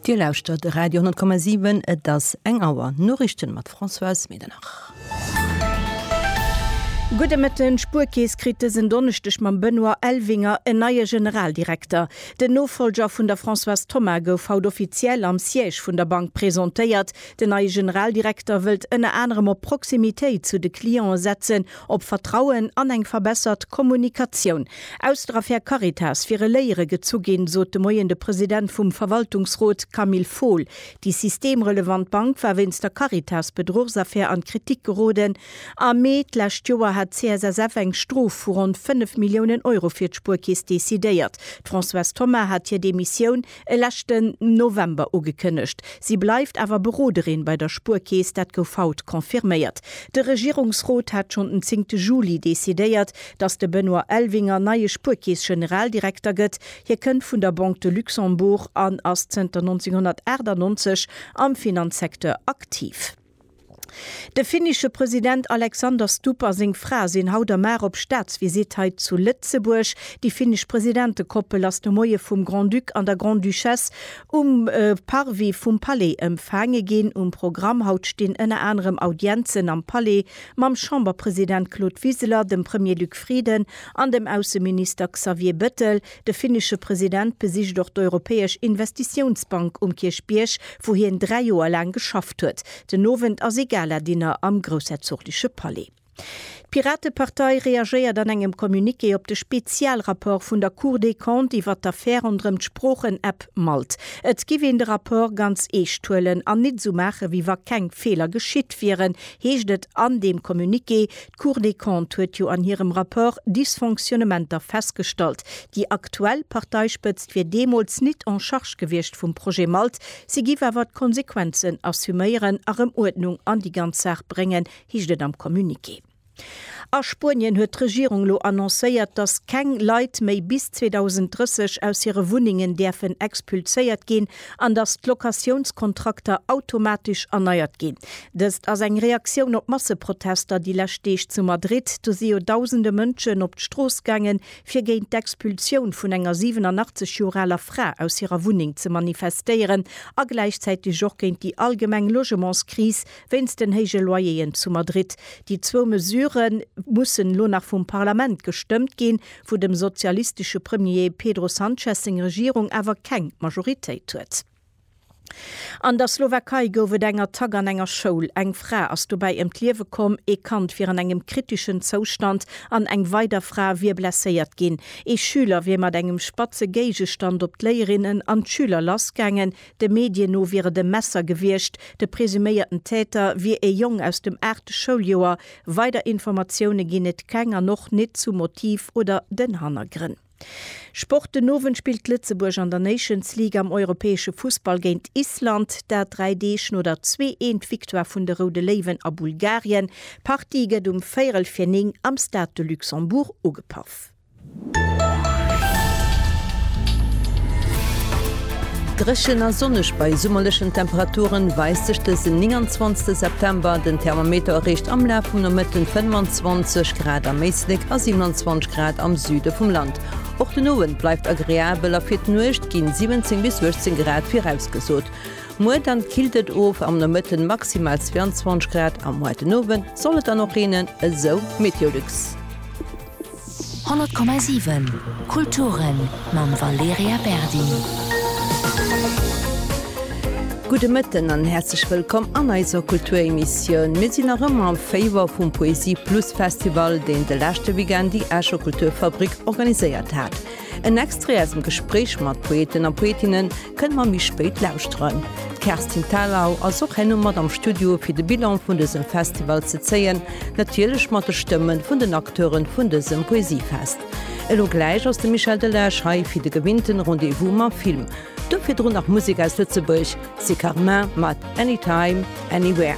Dir lauschtert de Radio 10,7, et ass eng Auer. Noriichten mat Françoise Medernach. Gudde Mëtten, D'Spuerkeess kritt dësen Donneschdeg mam Benoît Elvinger en neie Generaldirekter. Den Nofollger vun der Françoise Thoma gouf haut offiziell am Siège vun der Bank presentéiert. Den neie Generaldirekter wëllt ënner anerem op Proximitéit zu de Cliente setzen Op Vertrauen an eng verbessert Kommunikatioun aus der Affär Caritas wiere Léiere gezu ginn, sot de Moien de President vum Verwaltungsrot Camille Fohl. Déi systemrelevant Bank war wéinst der Caritas-Bedruchsaffär an d'Kritik geroden. Am Mee d'lescht Joer hat d'CSSF eng Strof vu ronn 5 Milliounen Euro fir d'Spuerkeess decidéiert. D'Françoise Thoma hat hir Demissioun e leschten November ugekënnegt. Si bleift awer Beroderin bei der Spuerkeess, dat gouf haut confirméiert. De Regierungsrot hat schonn den zéngte Juli decidéiert, datt de Benoît Elvinger neie Spuerkeess-Generaldirekter gëtt. Hie kënnt vun der Banque de Luxembourg an ass zënter 1998 am Finanzsecteur aktiv. De finnische President Alexander Stubb a seng Fra sinn haut a mar op Staatsvisitt hei zu Lëtzebuerg. Déi finnesch Presidentekoppel ass de Moie vum Grand-Duc an der Grande-Duchesse um Parvis vum Palais ëmfaange ginn. Um Programm haut stinn ënner anerem Audienzen am Palais mam Chamberpresident Claude Wiseler, dem Premier Luc Frieden an dem Ausseminister Xavier Bettel. De finnesche President besicht och d'Europäesch Investitiounsbank um Kierchbierg, wou hien dräi Joer laang geschafft huet. Den Owend ass ee Gala-Dinner am groussherzogleche Palais. D'Piratepartei reagéiert an engem Communiqué op de Spezialrapport vun der Cour des Comptes iwwert d'Affär ronderëm d'Sproochen-App Malt. Et giff een de Rapport ganz eescht huelen an nit esou maachen, wéi wa keng Feeler geschitt wieren, heescht et an deem Communiqué. D'Cour des Comptes huet jo an hirem Rapport Dysfonctionnementer festgestallt. Déi aktuell Parteispëtzt wier deemools nit en charge gewiescht vum Projet Malt, si giff awer d'Konsequenzen assuméieren a rëm Uerdnung an déi ganz Saach bréngen, heescht et am Communiqué. A Spuenien huet d'Regierung elo annoncéiert, datt keng Leit méi bis 2030 aus hire Wunnengen däerfen expulséiert ginn. an dass d'Locatiounskontrakter automatesch erneiert ginn. Dëst ass eng Reaktioun op d'Masseprotester déi lescht Deeg zu Madrid. Do si jo dausende Mënschen op d'Strooss gaangen, fir géint d'Expulsioun vun enger 87 Joer aler Fra aus hirer Wunneng ze manifestéieren a gläichzäiteg och géint déi allgemeng Logementskris, Wéinst den héije Loyeren zu Madrid. Déi zwou Mesure mussen elo nach vum Parlament gestëmmt ginn, wou dem sozialistesche Premier Pedro Sanchez seng Regierung awer keng Majoritéit huet. An der Slowakei gouf et eng Attack an enger Schoul. Eng Fra ass dobäi ëm d'Liewe komm, ee Kand wier an engem kriteschen Zoustand an eng weider Fra wier blesséiert ginn. Ee Schüler wier mat engem spatze Géigestand op d'Léierinnen an d'Schüler lassgaangen, De Medien no wier et e Messer gewiescht. De presuméierten Täter wier ee Jong aus dem aachte Schouljoer. Weider Informatioune ginn et keng an och nit zum Motiv oder den Hannergrënn. Sport, Den Owend spillt Lëtzebuerg an der Nations League am europäesche Fussball géint Island. Dat dräi Deeg no der zwee eent Victoire vun de Roude Léiwen a Bulgarien. D'Partie gëtt um véierel fir néng am Stade de Luxembourg ugepaff. Dréchen a sonneg bei summerlechen Temperaturen weist sech dësen 29 September. Den Thermometer erreecht am Laf vum Nomëtten 25 Grad am Éislek a 27 Grad am Süde vum Land. Och den Owend bleift agreabel a fir d'Nuecht ginn 17 bis 18 Grad virausgesot. Muer dann killt et of, am Nomëtten maximal 22 Grad a muer den Owend soll et dann och reenen, esou Meteolux. 100,7 Kulturen mam Valerija Berdi. Gudde Mëtten an häerzlech wëllkomm an eiser Kulturemissioun. Mir sinn nach ëmmer am Féiwer vum Poesie Plus Festival, deen de leschte Weekend déi Escher Kulturfabrik organiséiert hat. En Extrait aus dem Gespréich mat Poeten a Poetinne kënne mer méi spéit lauschteren. D'Kerstin Thalau ass och herno mat am Studio fir de Bilan vun dësem Festival ze zéien, natierlech mat de Stëmme vun den Acteure vun dësem Poesiefest. Elo gläich ass de Michel Delage hei fir de gewinnten Rendez-vous mam Film. Do virdrun nach Musek aus Lëtzebuerg, Siccarmin mat Anytime, Anywhere.